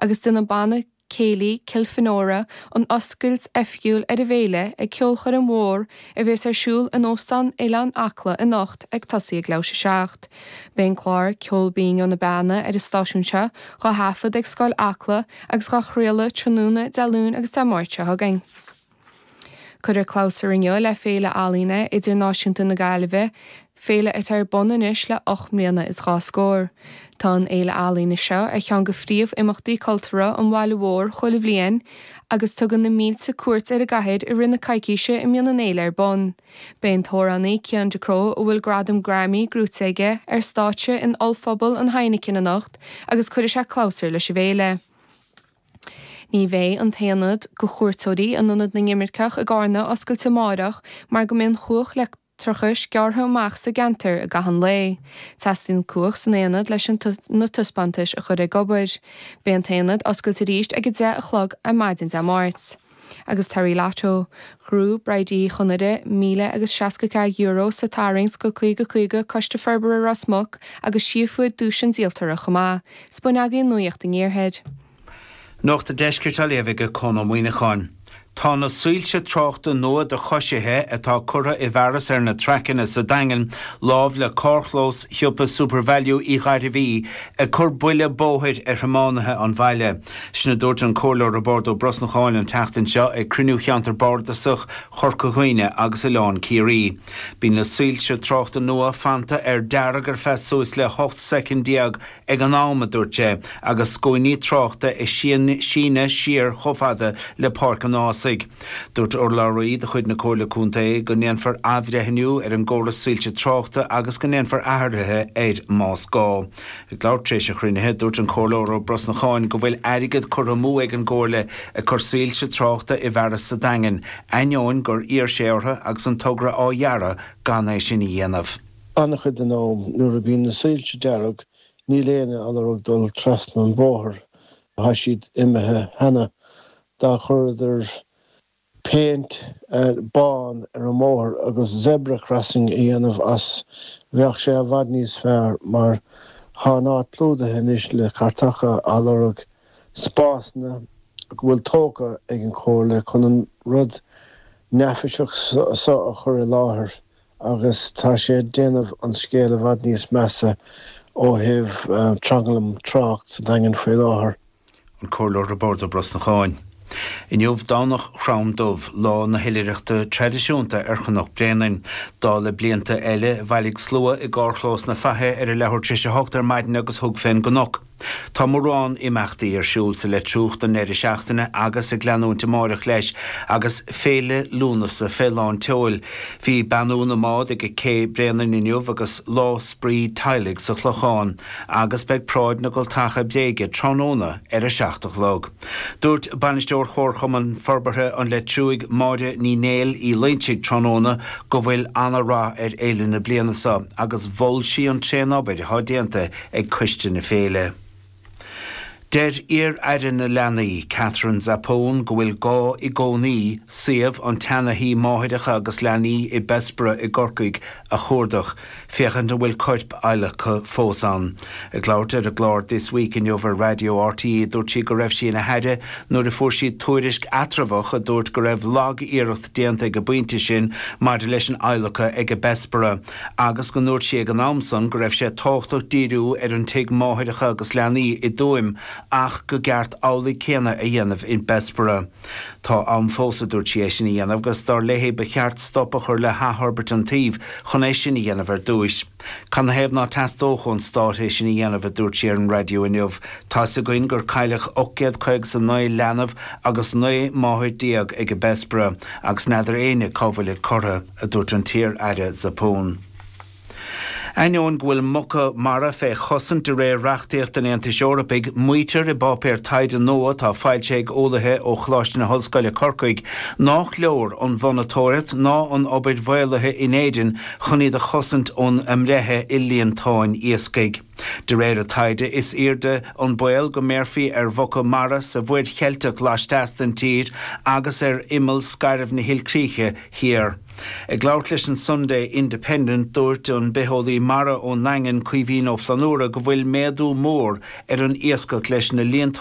agus déanfaidh Banna Céilí Kilfenora an oscailt oifigiúil ar a bhFéile ag ceolchoirm mhór a bhéas ar siúl in Óstán Oileán Acla anocht ag tosaí ag leathuair tar éis a 7. Beidh an clár Ceol Binn ó na Beanna ar an stáisiún seo dhá thaifead ag Scoil Acla agus dhá chraoladh tráthnóna Dé Luain agus Dé Máirt seo chugainn. Cuireadh clabhsúr inniu le Féile Ealaíne Idirnáisiúnta na Gaillimhe, féile atá ar bun anois le ocht mbliana is dhá scór. Tá an fhéile ealaíne seo ar cheann de phríomh imeachtaí cultúrtha an bhaile mhóir chuile bhliain agus tugann na mílte cuairt ar an gcathair i rith na coicíse a mbíonn an fhéile ar bun. Beidh an t-amhránaí Cian Ducrot, a bhfuil gradam Grammy gnóite aige, ar stáitse in ollphuball an Heineken anocht agus cuirfidh sé clabhsúr leis an bhféile. Ní bheidh an t-aonad do chuairteoirí in Ionad na nImirceach i gCarna oscailte amárach mar go mbeidh an chumhacht leictreachais gearrtha amach sa gceantar i gcaitheamh an lae. Teastaíonn cumhacht san aonad leis na taispeántais a chur ag obair. Beidh an t-aonad oscailte arís ag 10 a chlog ar maidin Dé Máirt. agus Terry Lato, Gru, Bridie Uí Chonaire, míle agus seasca ceathair euro sa tarraingt seo caoga caoga, Coiste Forbartha Ros Muc agus sí a fuair duais an díoltora chomh maith. Sin a bhfuil againn de nuaíocht an Iarthair. Nuacht an Deiscirt á léamh ag Conn Ó Muíneacháin. Tá na soilse tráchta nua do choisithe atá curtha i bhfearas ar na traiceanna sa Daingean lámh le carrchlós shiopa Supervalu Uí Ghairbhí ag cur buile bóthair ar thiománaithe an bhaile. Sin a dúirt an Comhairleoir Roibeárd Ó Brosnacháin an tseachtain seo ag cruinniú Cheantar Bárdasach Chorca Dhuibhne agus Oileán Ciarraí. Bíonn na soilse tráchta nua fanta ar dearg ar feadh suas le 18 soicind ag an am, a dúirt sé, agus scuainí tráchta ag síneadh siar chomh fada le Páirc an Ághasaigh. Dúirt urlabhraí de chuid na Comhairle Contae go ndéanfar athbhreithniú ar an gcóras soilse tráchta agus go ndéanfar athruithe air más gá. Ag labhairt tar éis an chruinnithe, dúirt an Comhairleoir Ó Brosnacháin go bhfuil airgead curtha amú ag an gComhairle ag cur soilse tráchta i bhfearas sa Daingean, ainneoin gur iarr sé orthu agus an togra á dhearadh gan é sin a dhéanamh. An-chuid den am, nuair a bhíonn na soilse dearg, níl éinne á lorg ag dul trasna an bhóthair, tá siad imithe cheana, dá gcuireadar péint bán ar an mbóthar agus zebra crossing a dhéanamh as, bheadh sé i bhfad níos fearr mar tá an áit plódaithe anois le cartacha á lorg, spásanna go bhfuil tógtha ag an Chomhairle chun an rud neafaiseach so a chur i láthair. agus tá sé ag déanamh an scéal i bhfad níos measa ó thaobh tranglam tráchta sa Daingean faoi láthair. An Comhairleoir Roibeárd Ó Brosnacháin. Inniu Domhnach Chrom Dubh, lá na hoilithreachta traidisiúnta ar Chnoc Bréanainn. Dála blianta eile, bhailigh slua i gcarrchlós na Faiche ar a leathuair tar éis a hocht ar maidin agus thug fén gcnoc. Tá mórán imeachtaí ar siúl sa Leitriúch don deireadh seachtaine agus ag leanúint amáireach leis agus Féile Lúnasa fé lán tseoil. Bhí beannú na mbád ag Cé Bhréanainn inniu agus Lá Spraoi Teaghlaigh sa Chlochán agus beidh Paráid na gCultacha Bréige tráthnóna ar a seacht a chlog. Dúirt Bainisteoir Chomharchumann Forbartha an Leitriúigh Máire Ní Néill Uí Loinsigh tráthnóna go bhfuil ana-rath ar fhéile na bliana seo agus mhol sí an tréanobair atá déanta ag Coiste na Féile. Deir iar-aire na leanaí, Katherine Zappone, go bhfuil gá i gcónaí suíomh an tseantí máithreacha agus leanaí i mBessborough i gCorcaigh a chuardach, féachaint an bhfuil coirp adhlactha fós ann. Ag labhairt ar an gclár This Week inniu ar Raidió RTÉ dúirt sí go raibh sí ina haire nuair a fuair siad tuairisc eatramhach a dúirt go raibh lag-iarracht déanta ag an bpointe sin maidir leis an adhlacadh ag Bessborough agus go ndúirt sí ag an am san go raibh sé tábhachtach díriú ar an Tigh Máithreacha agus Leanaí i dTuaim ach gur cheart amhlaidh céanna a dhéanamh in Bessborough. Tá am fós a dúirt sí é sin a dhéanamh agus dar léi ba cheart stop a chur le hathfhorbairt an tsuímh chun é sin a dhéanamh ar dtúis. Canathaobh ná teastódh ón Stát é sin a dhéanamh a dúirt sí ar an raidió inniu. Tá a fhios againn gur cailleadh ocht gcéad caoga 's a naoi leanbh agus naoi máthair déag ag Bessborough agus n'fheadar éinne cá bhfuilid curtha. a dúirt an t-iar-aire Zappone. Ainneoin go bhfuil muca mara fé chosaint de réir reachtaíocht an Aontais Eorpaigh, maítear i bpáipéar taighde nua atá foilsithe ag eolaithe ó Choláiste na hOllscoile Corcaigh nách leor an mhonatóireacht ná an obair mhaolaithe in Éirinn chun iad a chosaint ón mbreith i líontáin iascaigh. De réir a taighde, is airde an baol go mbéarfaí ar mhuca mara sa Mhuir Cheilteach laisteas den tír agus ar imeall scairbh na hilchríche thiar. Ag labhairt leis an Sunday Independent, dúirt an bitheolaí mara ón nDaingean, Caoimhín Ó Flannabhra, go bhfuil méadú mór ar an iascach leis na líontáin,